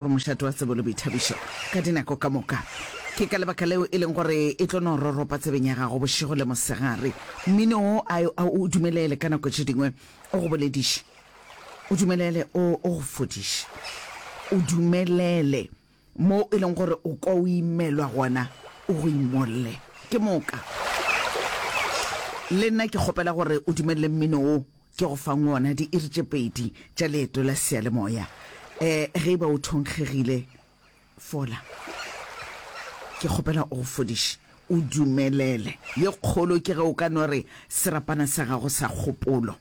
gore mošate wa tsebo le boithabišo ka dinako ka moka. Ke ka lebaka leo e leng gore e tlo no roropa tsebeng ya gago bošego le mosegare. Mmino wo a o dumelele ka nako tše dingwe o go bolediše, o dumelele o go fodiše, o dumelele mo e leng gore o kwa o imelwa gona o go imolle ke moka. Le nna ke kgopela gore o dumelele mmino wo Ke go fang wona diiri tše pedi tša leeto la seyalemoya. Eh, ge e ba o thonkgegile, fola. Ke kgopela o go fodiše, o dumelele. Ye kgolo ke ge o ka no re, Serapana sa gago sa kgopolo.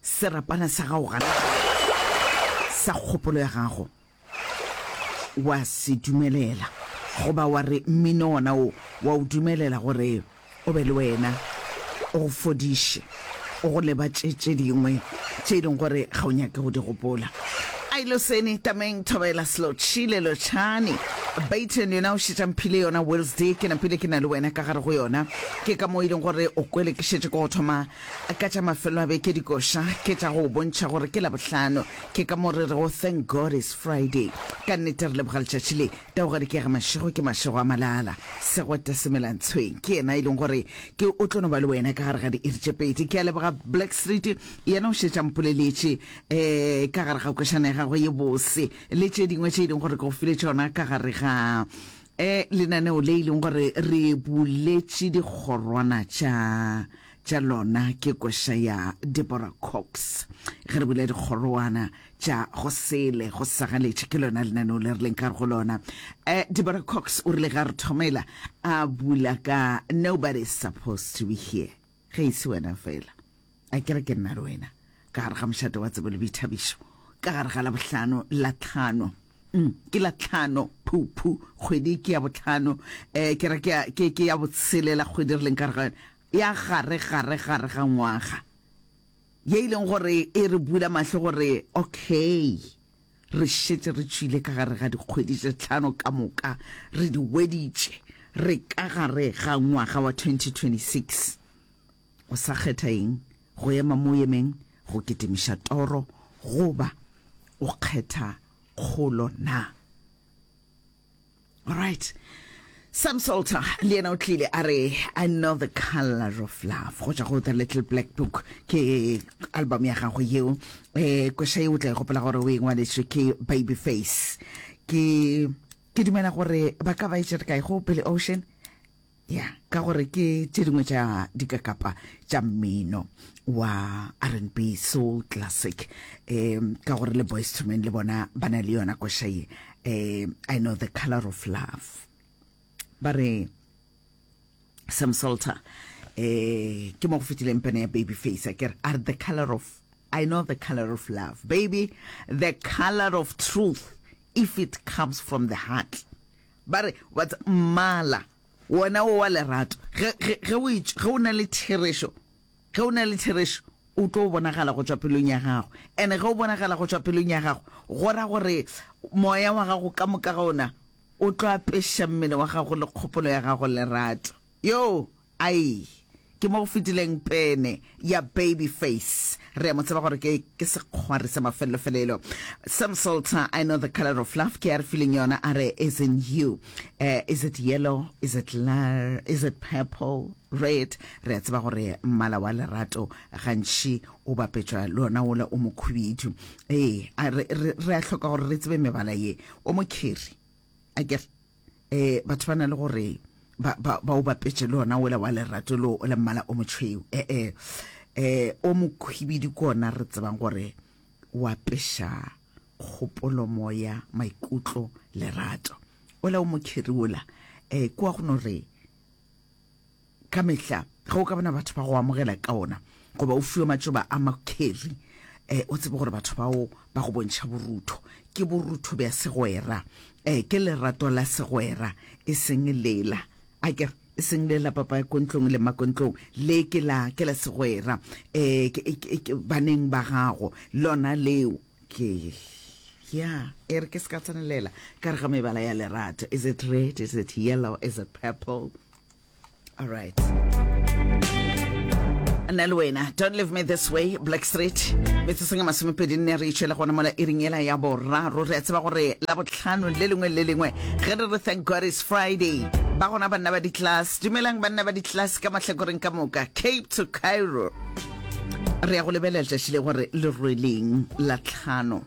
Serapana sa gago gana, sa kgopolo ya gago. Wa se dumelela, goba wa re mmino wona wo wa o dumelela gore o be le wena, o go fodiše, o go lebatše tše dingwe tše e leng gore ga o nyake go di gopola. Ai Loseni, Tameng, Thobela, Slotšhile, Lotšhani, Bayton yona o šetša mphile yona Wednesday, ke napile ke na le wena ka gare go yona. Ke ka moo e leng gore o kwele ke šetše ke go thoma ka tša mafelo a beke dikoša ke tša go o bontšha gore ke Labohlano. Ke ka mo re rego thank God it's Friday. Ka nnete re leboga letšatši le. Taugadi ke ya ga Mašego, ke Mašego a Malala. Segwete se mela ntshweng. Ke yena e leng gore ke o tlo no ba le wena ka gare ga diiri tše pedi. Ke a leboga Black Street, yena o šetše a mpoleletše um ka gare ga kwešana ya gagwe ye bose le tše dingwe tše e leng gore ke go file tšona ka gare ga um lenaneo le e leng gore re buletše dikgorwana tša tša lona ke koša ya Deborah Cox. Ge re bula dikgorowana tša go sele go sagaletše ke lona lenaneo le re leng ka go lona. Uh, Deborah Cox o rile ga re thomela a bula ka nobody is supposed to be here ge e se wena fela a kere ke nna le wena ka gare ga mošate wa tsebo le boithabišo ka gare ga labohlano la tlhano mm, ke la tlhano phuphu kgwedi ke ya botlhano um ke re ke ya botshelela kgwedi re leng ka re ga yone ya gare gare gare ga ngwaga, ye e leng gore e re bula mahlo gore okay, re šetše re tšwile ka gare ga dikgwedi tše tlhano ka moka, re di hweditše, re ka gare ga ngwaga wa 2026. O sa kgetha eng, go ema mo o emeng, go kitimiša toro, goba o kgetha kgolo na? right Sam Salter le yena o tlile a re I know the color of love go tšwa go the little black book ke album ya gago yeo eh kwesha yeo o tla e gopela gore o e ngwaletswe ke baby face ke ke dumela gore ba ka ba e tšere kae go pele ocean Ya, ka gore ke tše dingwe tša dikakapa tša mmino wa rnb soul classic um ka gore le boys to men le bona ba na le yona koša ye um i know the color of love ba re sam salter um ke mo go fetileng pene ya baby face a kere are the color of i know the color of love baby the color of truth if it comes from the heart ba re wa tsa mmala wona wo wa lerato ge ge ge o itš- ge o na le therešo ge o na le therešo o tlo o bonagala go tšwa pelong ya gago ene ge o bonagala go tšwa pelong ya gago go ra gore moya wa gago ka moka ga ona o tlo apeša mmele wa gago le kgopolo ya gago lerato yo Ai, ke mo go fetileng pene ya baby face. Re a mo tseba gore ke, ke sekgwari sa mafelelo-felelo. Sam Salter, I know the color of love, ke a re fileng yona, a re, is in you. Eh, is it yellow? Is it lar? Is it purple? Red? Re a tseba gore mmala wa lerato gantši o bapetšwa le ona wola o mokhubidu. Ee, a re, re, re a hloka gore re tsebe mebala ye. O mokhiri. a kere um batho ba na le gore ba o bapetše le ona ola wa lerato leo o le mmala o motšhweu ee um o mokhwibidi ke ona re tsebang gore wa peša kgopolo moya maikutlo lerato ola o mokheri ola um ke wa go no re Ka mehla, ge o ka bona batho ba go amogela ka ona, goba o fiwa matšoba a makheri, um o tsebe gore batho bao ba go bontšha borutho. Ke borutho bja segwera, um ke lerato la segwera, e seng lela, a ke re, e seng le la papa ya kontlong le makontlong, le ke la, ke la segwera, um baneng ba gago, lona leo. Ke, ya, e re ke se ka tsenelela ka gare ga mebala ya lerato. Is it red? Is it yellow? Is it purple? All right. nna le wena don't leave me this way black street metseseng a masomepedi nne re itšhela gona mola e ring ela ya boraro re a tseba gore la botlhano le lengwe le lengwe ge re re thank god is friday ba gona banna ba di-class dumelang banna ba di-class ka mahlakoreng ka moka cape to cairo re ya go lebelela letšatši le gore le rweleng la tlhano